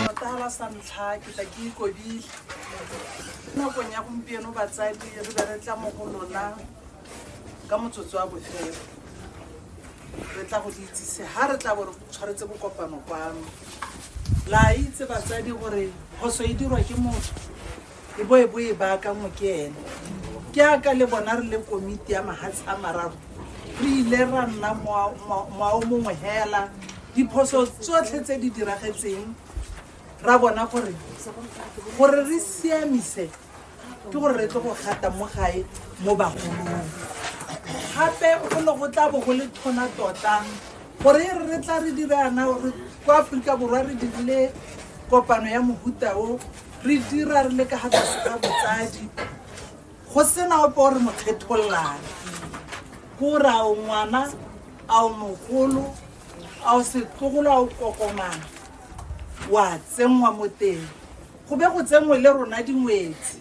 Motala sa ntlha ke tla ke ikodile nakong ya gompieno batsadi re be re tla mo go lona ka motsotso wa bofelo re tla go le itsise ga re tla bo re tshwaretse bokopano kwano la itse batsadi gore phoso e dirwa ke motho e bo e bo e baakangwe ke ene ke aka le bona re le komiti ya mahatshe a mararo re ile ra nna moao mongwe hela diphoso tsotlhe tse di diragetseng ra bona gore gore re siamise ke gore re tle go gata mo gae mo bagolong gape go ne go tla bo go le thona tota gore e re re tla re dirana gore kwa aforika borwa re dirile kopano ya mohuta o re dira re le ka ga tlase ga botsadi go sena ope o re mo kgetholang kore a o ngwana a o mogolo a o setlogolo a o kokomana wa tsenngwa mo teng go be go tsenngwe le rona dingwetsi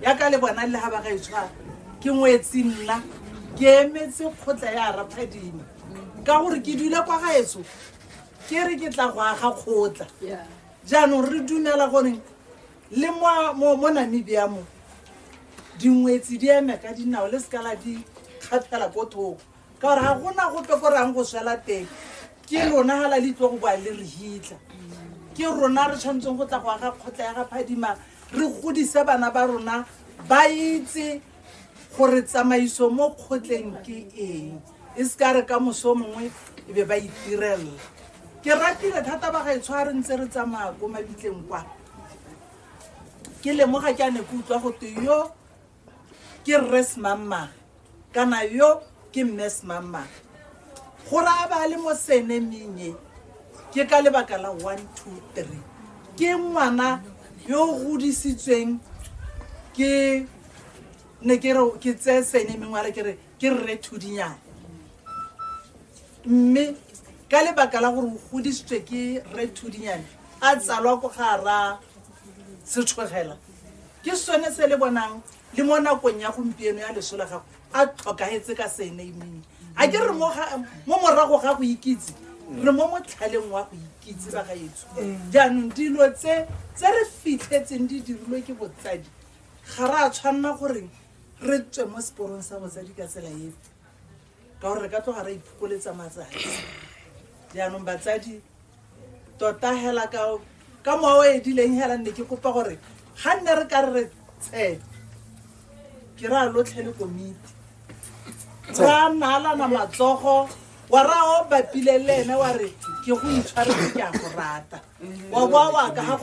yaka le bona le ga ba gaetshwara ke ngwetsi nna ke emetse kgotla ya raphadima ka gore ke dule kwa gaetso ke re ke tla go aga kgotla jaanong re dumela gore le mo- mo mo namibia mo dingwetsi di eme ka dinao le sekala di kgathela ko thoko ka gore ga gona gope ko reyang go swela teng ke lona ga la le tlo go boa le re hitlha ke rona re tshwanetseng go tla go aga kgotla ya ga phadima re godise bana ba rona ba itse gore tsamaiso mo kgotleng ke eng e se ka re ka moso mongwe e be ba itirelela ke ratile thata ba ga etsho a re ntse re tsamaya ko mabitleng kwa ke lemoga ke a ne ke utlwa go te yo ke rres mammage kana yo ke mme semamang go raya ba le mo senemeng e ke ka lebaka la one two three ke ngwana yo o godisitsweng ke ne ke re ke tseye senemeng wa re ke re ke rre thudinyana mme ka lebaka la gore o godisitswe ke rre thudinyane a tsalwa ko ga ra setshogela ke sone se le bonang le mo nakong ya gompieno ya leso la gago a tlhokagetse ka senaming a ke re mo morago ga go ikitse re mo motlhaleng wa go ikitse ba ga etso jaanong dilo tse tse re fitlhetseng di dirilwe ke botsadi ga re a tshwanela goreng re tswe mo seporong sa botsadi ka tsela efe ka gore re ka tloga re iphokoletsa matsatsi jaanong batsadi tota hela ka ka mowa o edileng hela nne ke kopa gore ga nne re ka re re tshe ke ra lotlhe le komiti ra naalana matsogo wa ra o bapile le ene wa re ke go itshwaretse ke a go rata wa boa wa ka